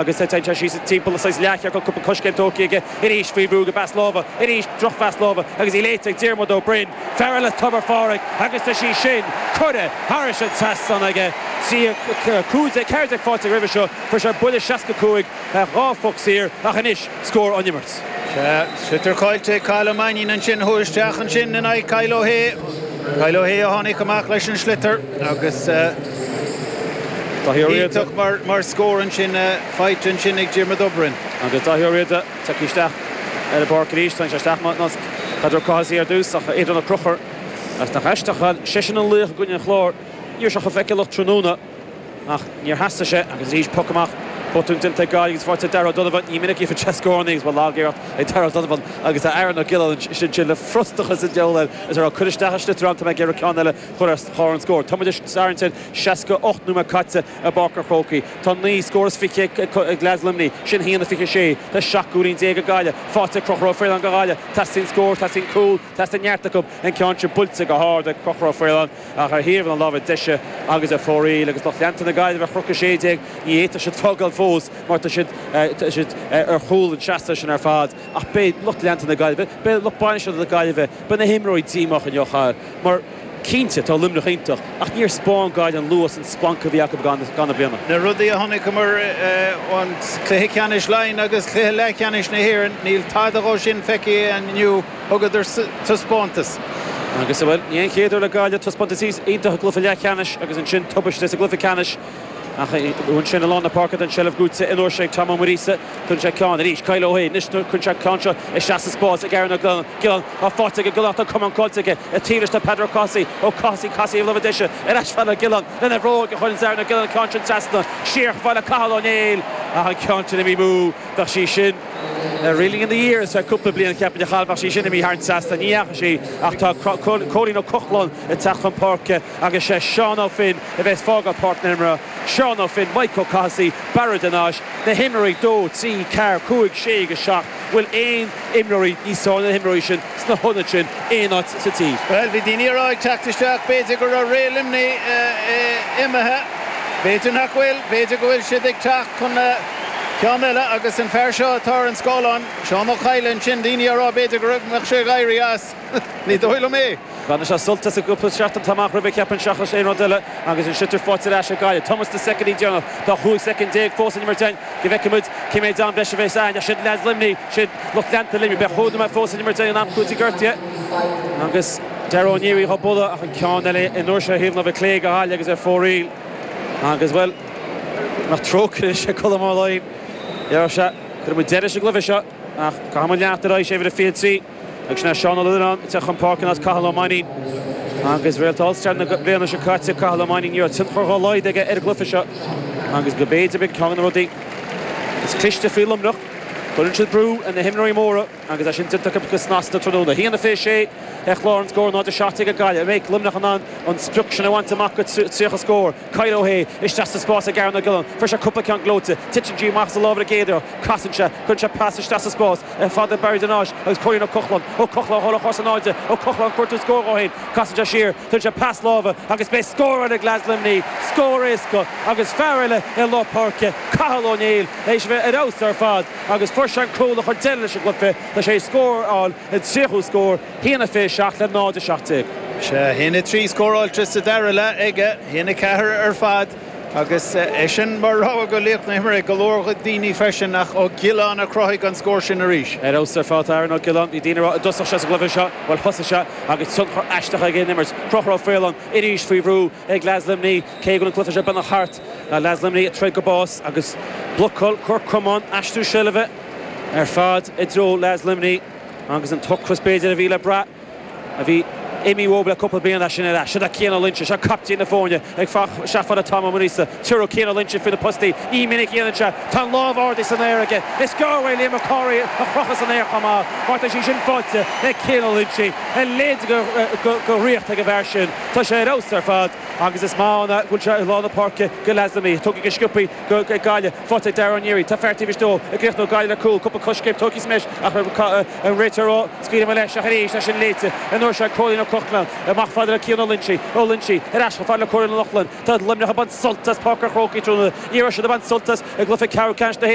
Agus tá sé síos timpeall saghas leathchiorcal, cúpla coiscéim tógtha aige arís faoi bhrú go pas láimhe. Arís, drochphas láimhe, agus í léite ag Diarmuid Ó Broin, fear eile Tobar Phádraig, agus tá sí sin curtha thairis an trasnán aige. 13 15 faighte aige roimhe seo, fuair sé buille 65, dhá phoc saor, ach anois, scór ón imirt. Sea, sliotar caillte ag Cathal Ó Mainnín ansin. Chuaigh isteach ansin in aghaidh Kyle Ó hAodha. Kyle Ó hAodha a tháinig amach leis an sliotar agus Dáithí Ó Riada. Iontach mar scór ansin, faighte ansin ag Diarmuid Ó Broin. Agus Dáithí Ó Riada tagtha isteach ar an bpáirc arís. Tháinig sé isteach mar nasc Peadar Ó Cathasaigh ar dtús ach Aodán Ó Conchubhair, agus nach aisteach é, seisean an laoch i gcoinne an Chláir. Ní raibh sé chomh feiceálach tráthnóna. Ach níor theastaigh sé agus arís, poc amach. Botún déanta ag Gaillimh agus faighte ag Darragh O'Donovan. Ní minic a gheobhadh sé scórannaí agus ba lag iarracht ag Darragh O'Donovan agus Aaron Ó Giolláin ansin le frustachas an deabhail air is é ag iarraidh cur isteach an sliotar ann. Tá mé ag iarraidh ceann eile a chur ar chlár an scór. Tá muid ag tarraingt ar 68 nóiméad caite i bPáirc an Chrócaigh. Tá naoi scór is fiche ag leaids Luimnigh, sin haon a fiche a sé. Tá seacht gcúilín déag ag Gaillimh faighte ag Conchubhar Ó Faoláin do Ghaillimh. Teastaíonn scór, teastaíonn cúl. Teastaíonn neart acu an ceann sin buailte go hard ag Conchubhar Ó Faoláin ach ar thaobh na láimhe deise agus ar fóraoil. Agus lucht leanta na Gaillimhe ar Chnoc 16, ní fhéadfadh siad fágáil fós mar tá siad ar chúl an tseasta sin ar fad. Ach beidh lucht leanta na Gaillimhe, beidh lucht bainistithe na Gaillimhe, beidh na himreoirí díomách inniu mar, Cinnte, tá Luimneach iontach, ach níor 'speáin Gaillimh an luas an splanc a bhí acu i gcaitheamh na bliana. Na rudaí a chonaiceamar ó chluiche ceannais Laighean agus cluiche leathcheannais na hÉireann, níl tada dhó sin feicthe inniu, thugadar taispeántas. Agus, bhuel, ní hé an chéad uair le Gaillimh, taispeántas iontach i gcluiche leathcheannais agus ansin tubaiste sa gcluiche ceannais. Ach ansin, i lár na páirce, tá an seilbh gnóite an uair seo ag Tom Ó Muiríosa. Cuireann sé ceann arís. Kyle Ó hAodha, anois nuair cuireann sé an ceann seo isteach sa spás ag Aaron Ó Giolláin, tá faighte ag an nGiollánach, tá an camán caillte aige, a tílis do Peadar Ó Cathasaigh, Ó Cathasaigh, Cathasaigh ag lobhadh deise ar ais chuig Aaron Ó Giolláin, lena bhróig a chuireanns Aaron Ó Giolláin an ceann sin trasna, siar chuig bhaile Cathal Ó Néill, ach an ceann sin imithe amú, bheadh sí sin, Reeling in the Years ar cúpla bliain, cheapfainn, a Chathail, dá mbeadh sí sin imithe thar an trasnán, ní dheachaigh sí, ach tá Cóilín Ó Cochláin ag teacht chun páirce agus sé Seán Ó Finn a bheas ag fágáil páirc na himeartha. Seán Ó Finn, Maidhc Ó Cathasaigh, Barra de Nais, na himreoirí 2, 3, 4, 5, 6 agus 7, an bhfuil aon imreoirí níos fearr ná na himreoirí sin sna hionaid sin aon áit sa tír? Bhuel, bhí daoine a rá ag teacht isteach b'fhéidir go raibh ré Luimnigh imithe. B'fhéidir nach bhfuil, b'fhéidir go bhfuil siad ag teacht chun ceann eile agus an fear seo atá ar an scáileán, Seán Ó Cadhla ansin, daoine á rá b'fhéidir go raibh, mbeadh sé ag éirí as. Ní dóigh liom é. Baineadh sé sult as an gcúpla seachtain atá amach roimhe, cheapfainn, seachas aon rud eile, agus ansin tá fáilte ar ais ag Gaillimh. Tá muid sna soicindí deireanacha, tá 15 soicind fós san imirt againn, go bhfeicfimid cé méid am breise a bheas againn. Ach siad leaids Luimnigh, siad lucht leanta Luimnigh, beidh cheithre nóiméad fós san imirt againn in am cúitimh gortaithe, agus Dara Ó Nearaí dhá bualadh ach an ceann eile an uair seo ar thaobh na láimhe clé go hard agus ar fóraoil, agus, bhuel, nach trócaire sé Colm Ó Laighin, déarfadh sé. Cuirfimid deireadh leis an gcluiche seo. Ach caithfidh muid leanacht ar aghaidh, sé uimhir a 23, agus sin é Seán Ó Lionnáin ag teacht chun páirce in áit Cathal Ó Mainnín. Agus réalta All-Star na bliana seo caite, Cathal Ó Mainnín, ní raibh tionchar dhá laghad aige ar an gcluiche seo agus go mb'fhéidir b'in ceann de na rudaí is cliste faoi Luimneach, go gcuireann siad brú ar na himreoirí móra agus é sin déanta acu go snasta tráthnóna. A haon a 26 ar chlár na scór, 0-17 ag Gaillimh. An mbeidh Luimneach in ann an sprioc sin a bhaint amach go 30 scór? Kyle Ó hAodha, isteach sa spás ag Aaron Ó Giolláin. Fuair sé cúpla ceann gleoite. Titeann sí amach as a lámha i gcéaduair. Casann sé. Cuireann sé pas isteach sa spás chomh fada le Barra de Nais agus Cóilín Ó Cochláin. Ó Cochláin ag dul ar cosa in airde. Ó Cochláin ag cuartú scóir dhó féin. Casann sé siar. Tugann sé pas láimhe agus beidh scór ann ag leaids Luimnigh. Scór éasca agus fear eile i lár páirce, Cathal Ó Néill, éis a bheith ar fheabhas ar fad agus fuair sé an cúl a chuir deireadh leis an gcluiche. Tá sé ag scóráil a 30ú scór. A haon a 27 le 0-17. Sea, a haon a 3 scóráilte sa dara leath aige, a haon a 4 ar fad agus eisean mar rogha do laoch na himeartha ag go leor daoine freisin ach Ó Giolláin a chruthaigh an scór sin arís. Ar fheabhas ar fad atá Aaron Ó Giolláin. Bhí daoine ag rá an dtosódh sé sa gcluiche seo, bhuel thosaigh sé agus tionchar aisteach aige ar an imirt. Conchúr Ó Faoláin arís faoi bhrú ag leaids Luimnigh cé go bhfuil an cluiche seo beagnach thart. Leaids Luimnigh ag troid go bás agus blocáil Corc Comáin, aistriú seilbhe ar fad i dtreo leaids Luimnigh. Agus an t-ocras b'fhéidir a bhí le brath a bhí imithe uathab le cúpla bliain tá sin ar ais. Seo Cian Ó Loinsigh, seo caiptín na foirne isteach chomh fada le Tom Ó Muiríosa, tabharfaidh Cian Ó Loinsigh faoi na postaí. Ní minic a dhéanann sé. Tá an lámh ardaithe san aer aige. Is gearr é Liam Mac Cárthaigh a chrochadh san aer chomh maith mar tá sé sin faighte ag Cian Ó Loinsigh. A leithéid de dhraíocht ag an bhfear sin. Tá sé ar fheabhas ar fad agus is maith ann go bhfuil sé i lár na páirce do leaids Luimnigh. Tógtha go sciobtha. ag Gaillimh, faighte ag Dara Ó Nearaí, tá fear taobh istigh dó an gcríochnóidh Gaillimh le cúl, cúpla coiscéim tógtha sa mbreis ach an réiteoir ag scaoileadh amach leis ach arís, é sin léite an uair seo ag Cóilín Ó Cochláin, amach chomh fada le Cian Ó Loinsigh, Ó Loinsigh ar ais chomh fada le Cóilín Ó Cochláin, tá Luimneach ag baint sult as páirc an Chrócaigh tráthnóna, ní raibh siad ag baint sult as i gcluiche ceathrú ceannais na hÉireann.